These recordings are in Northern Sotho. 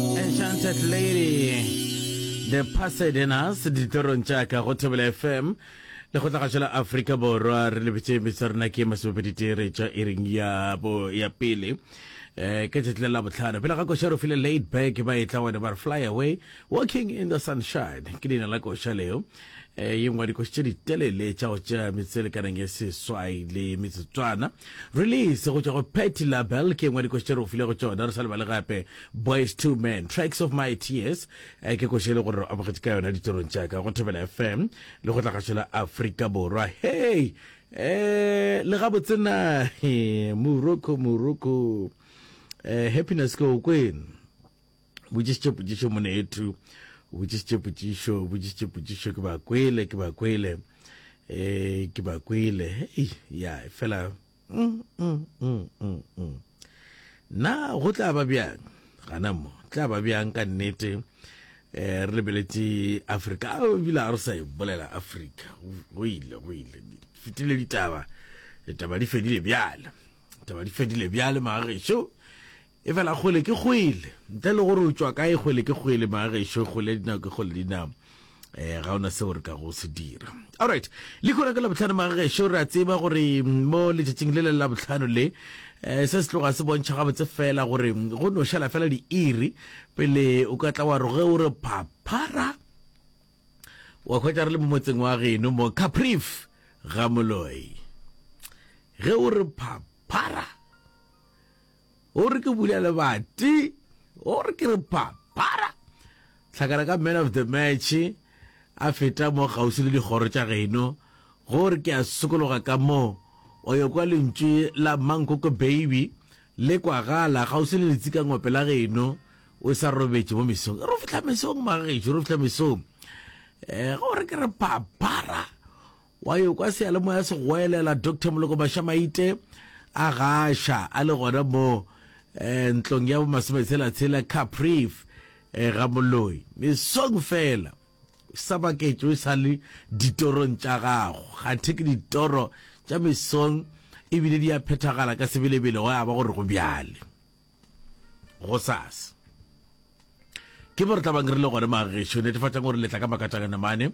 Enchanted Lady The Pasadenas ditorong tša ka go Thobela FM le go tla gašela Afrika Borwa re lebetse metsa rena ke masomepeditere tša ering ya bo ya pele eh ke tšatši la bohlano pele ga koša re file laid back ba e tla wena ba re fly away walking in the sunshine ke leina la koša leo e ye ngwa dikoši tše ditelele tša go tšea metselekaneng e seswai le metsotswana release go tšwa go petty label ke ngwa dikoši tše re go file go tšona re sa lebale gape boys two men tracks of my tears e ke koši e le gore re amogetse ka yona ditirong tšaka go thobela fm le go tlagašo la afrika borwa hei um le gabotsena moroko moroko um happiness ke o kwene botšišitše potšišo moneethu o botšišitše potšišo o botšišitše potšišo ke ba kwele ke ba kwele um ke ba kwele hei ya fela mm, mm, mm, na go tla ba bjang gana mo tla ba bjang ka nnete um re lebeletše afrika a ebile a re sa e bolela afrika go ile go ile fetile ditaba ditaba di fedile bjale ditaba di fedile bjale magagešo Efela kgole ke kgwele, ntle le gore o tšwa kae, kgwele ke kgwele, baagešo, kgole ya dinao ke kgole ya dinao. Eh, ga ona seo re ka go se dira. Alright, le khona ka labohlano magagesho re a tseba gore mm, mo letšatšing le le la bohlano le eh, se se tloga se bontšha gabotse fela gore mm, go no šala fela diiri pele o ka tla wa roge o re phaphara wa khwetša re le mo motseng wa geno mo caprif ga moloi ge o re phaphara O re ke bula lebati. O re ke re papara. Tlhakana ka man of the match a feta mo kgauswi le dikgoro tša geno. Go re ke a sokologa ka mo o yo kwa lentšu la Mankoko Baby le kwagala kgauswi le letsikangope la geno. O sa robetše mo mesong. Ro fihla mesong magagešo, ro fihla mesong. Go re ke re papara. Wa yo kwa seyalemoya se goelela, Doctor Moloko Mashamaite a gaša a le gona mo eh, ntlong ya bomasometshela-tshela Capriv eh, ga Moloi. Mesong fela sa baketšo e sa le ditorong tša gago. Gathe ke ditoro tša mesong ebile di a phethagala ka sebelebele go ya ba gore go bjale. go sas ke bo re tlabang re le gone mageso netefatšang gore letla ka makatšangane mane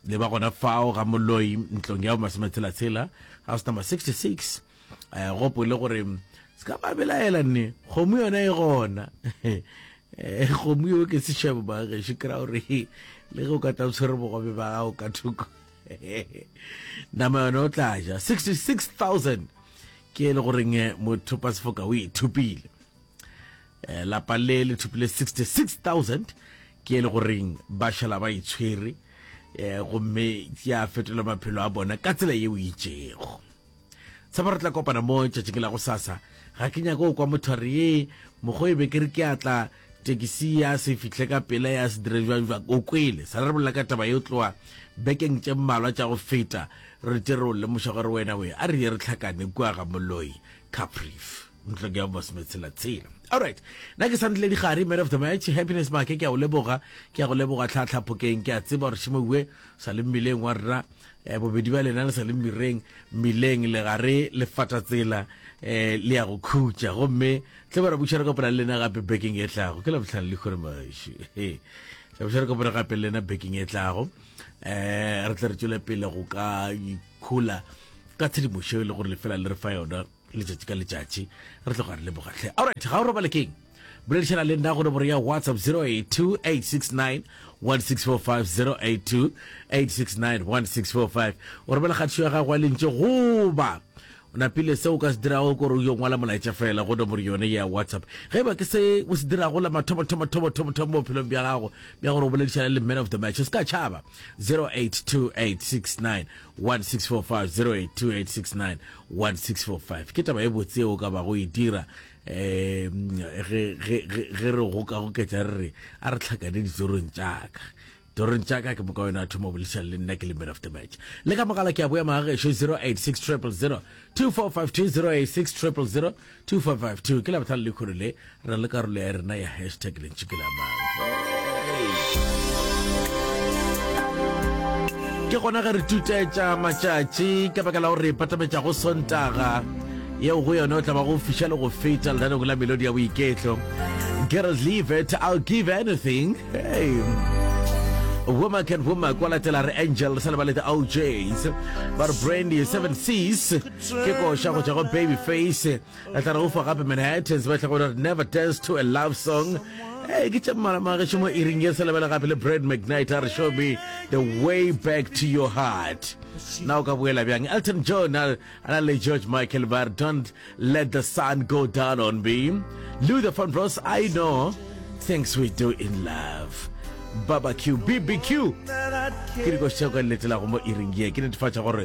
le ba gona fao ga moloi ntlong ya masometshela-tshela house number 66 eh, gopo le gore se ka ba belaela nne kgomo yona e gona eh, kgomo yo ke sešebo mageso kry-a gore le ge o ka tla o tshwere bogobe ba gago ka thoko nama yone o tla ja 66000 ke e le goreng eh, mothopa sefoka o ithupile eh, lapa le le thupile 66000 ke e le goreng ba šala ba itshwere eh, gomme ya fetola maphelo a bona ka tsela ye o itšego tshaba re tla kopana mo tšatšing la go sasa ga ke nyako kwa motho a re ye mokgo e be ke re ke atla tekisi ya se fihle ka pela ya se dire jwang jwang o kwele sa re bolela ka taba yo tloa bekeng tše mmalwa tša go feta re tle re o lemoša gore wena we a re ye re tlhakane kua ga moloi caprief ntlo ke ya mosme tshela tshela alright nna ke santle digare man of the match happiness make ke a o leboga ke a go leboga tlhatlha phokeng ke a tseba gore šemoue sa le mmeleng wa rra E, bobedi ba lena le sa le mmireng, mmileng, legare le fatatsela, e, le ya go khutša. Gomme tle ba re buša re kopana le lena gape bekeng e tlago. Ke labohlano le kgore mašu. Tla buša re kopana gape le lena bekeng e tlago. Um re tle re tšwele pele go ka ikhola ka tshedimošo e le gore lefela le re fa yona letšatši ka letšatši re tloga re leboga tlhe alright ga o robale keng boledišana le nna go nomoro ya whatsapp 0828691645 o romela kgatišo ya gago ya lentše goba o napile seo o ka se dirago kore o yo ngwala molaetša fela go nomoro yone ya whatsapp ge e ba ke se o se dirago la mathomathomathomathomathomo bophelong bja gago bja gore o boledišana le man of the match o se ka tšhaba 082869 1645-082869-1645 ke taba e botse o ka ba go e dira um ge re gokagoketša re re a re tlhakane ditsorong tšaka torong tšaka ke moka wena a thoma bolešang le nna ke le man of the match le ka mogala ke a boya magagešo 086 000 2452 086 000 2552 ke labohlano le kgolo le re na le karolo ya rena ya hashtag lentši ke la mang ke gona ge re tutetša matšatši ka baka la gore patametša go sontaga yeo go yone o tla ba go fiša le go feta lenaneng la melodi ya boiketlo girls leave it i'll give anything hey. Woman can woman kwa latela re angel sa le ba le the ojs ba re brandy seven seas ke koša go tšwa go baby face a tla re o fa gape manhattans ba tlhago gore never dance to a love song ee ke tša mmalamageše mo iring ye se lebele gape le brad mcnight a re show me the way back to your heart na o ka boela bjang elton john a na le george michael bar don't let the sun go down on me luther van bros i know things we do in love barbecue bbq ke dikoša tšeo ka nnetelago mo iring ye ke netefatša gore